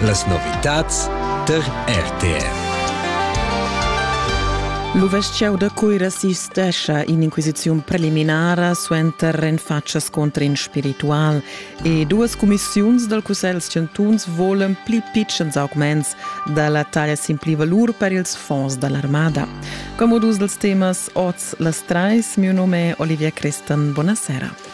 Las novitads tar RTR. L'uveschiau da Cuira sistescha in'inquisiziun preliminara suenter en faccia scontr in spiritual e duas cumissiuns dal Cussegl chantuns volan pli pitschens augments da la taglia sin pli-valur per ils fonds da l'armada. Come dus dels temas oz las trais, mio nome è Olivia Crestan. Buonasera.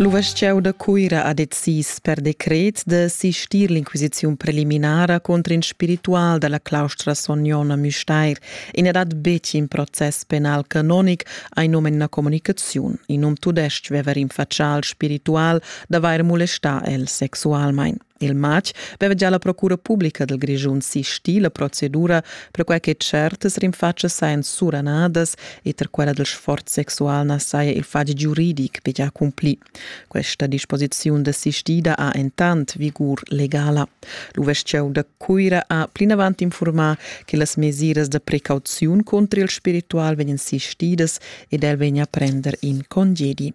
L'uvestgieu da Cuira ha decis per decret da sistir l'inquisiziun preliminara contro in spiritual dalla claustra Sognona Müstair e n'è dat betg in process penal canonic ai num en la comunicaziun. In um tudestg veva rinfaccià al spiritual d'avair molestà el sexualmain. Il matg veva gia la procura publica dal Grischun sistì la procedura perquai che certas rinfatschas sajan suranadas e tar quella dal sforz sexual na saja il fatg giuridic betg accumplì. Questa disposiziun desistida ha entant vigur legala. L'uvestgieu da Cuira ha plinavant infurmà che las mesiras da precauziun contro il spiritual vegnan sistidas ed el vegna a prender in congedi.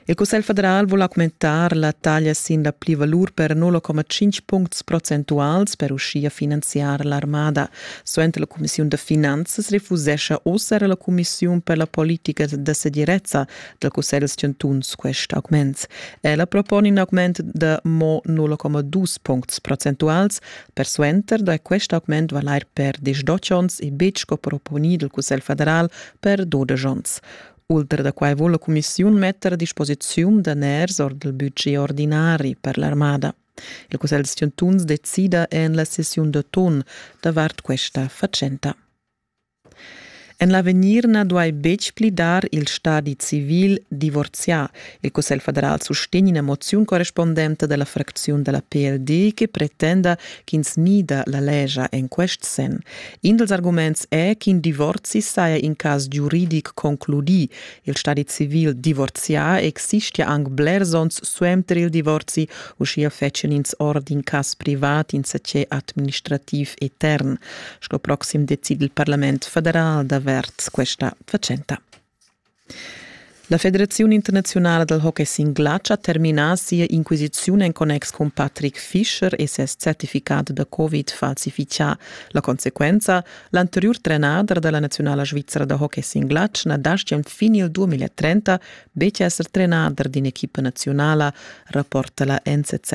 Il Cussegl federal vul augmentar la taglia sin la plivalur per 0,5 puncts procentuals per uschia finanziar l'armada. Suenter la cumissiun da finanzas refusescha oz era la cumissiun per la politica da segirezza dal Cussegl da chantuns quest augment. Ella propone in augment da mo 0,2 puncts procentuals. Persuenter da quest augment val er per 10 onns e betg sco proponì dal Cussegl federal per 12 onns. Ultra da quai vul la cumissiun metter a disposiziun daners ord il budget ordinari per l'armada. Il Cussegl da chantuns decida en la sessiun d'autun davart questa fatschenta. En l'avegnir na duai betg pli dar il stadi civil divorzià. Il Cussegl federal sustegna ina moziun correspondente della fracziun della PLD che pretenda ch'ins mida la legia en quest senn. In dals arguments è ch'in divorzi saja in cas giuridic concludì. Il stadi civil divorzià existia anc blers onns suenter il divorzi, uschia fetschien ins ord in cas privat insatge administrativ etern. Sco proxim decid il Parlament federal d'avert questa fatschenta. La Federaziun internaziunala dal hockey singlatsch ha terminà sia inquisiziun en connex cun Patrick Fischer e ses certificat da Covid falsifichà. La consequenza, l'anteriur trenader da la naziunala svizra da hockey singlatsch na dastgia fin il 2030 betg esser trenader d'in'equipa naziunala, rapporta la NZZ.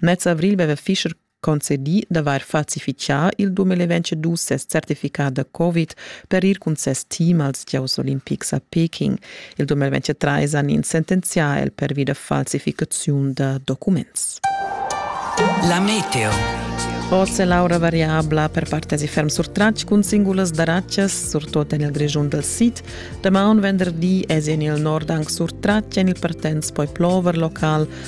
Mez avrigl aveva Fischer concedì d'avair falsifitgà il dumel e vencedus ses certificat da Covid per ir cun ses team als gieus olimpics a Peking. Il dumel 23 han ins sentenzià el pervi da falsificaziun da documents. La meteo. Oz è l'aura variabla per partenzi ferm sur Tratsch cun singulas daraccias, surtut en il Grischun dal sid. Damaun venderdi èsi en il nord anc sur Tratsch en il partenz poi plover local,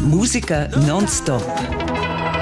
Musica non-stop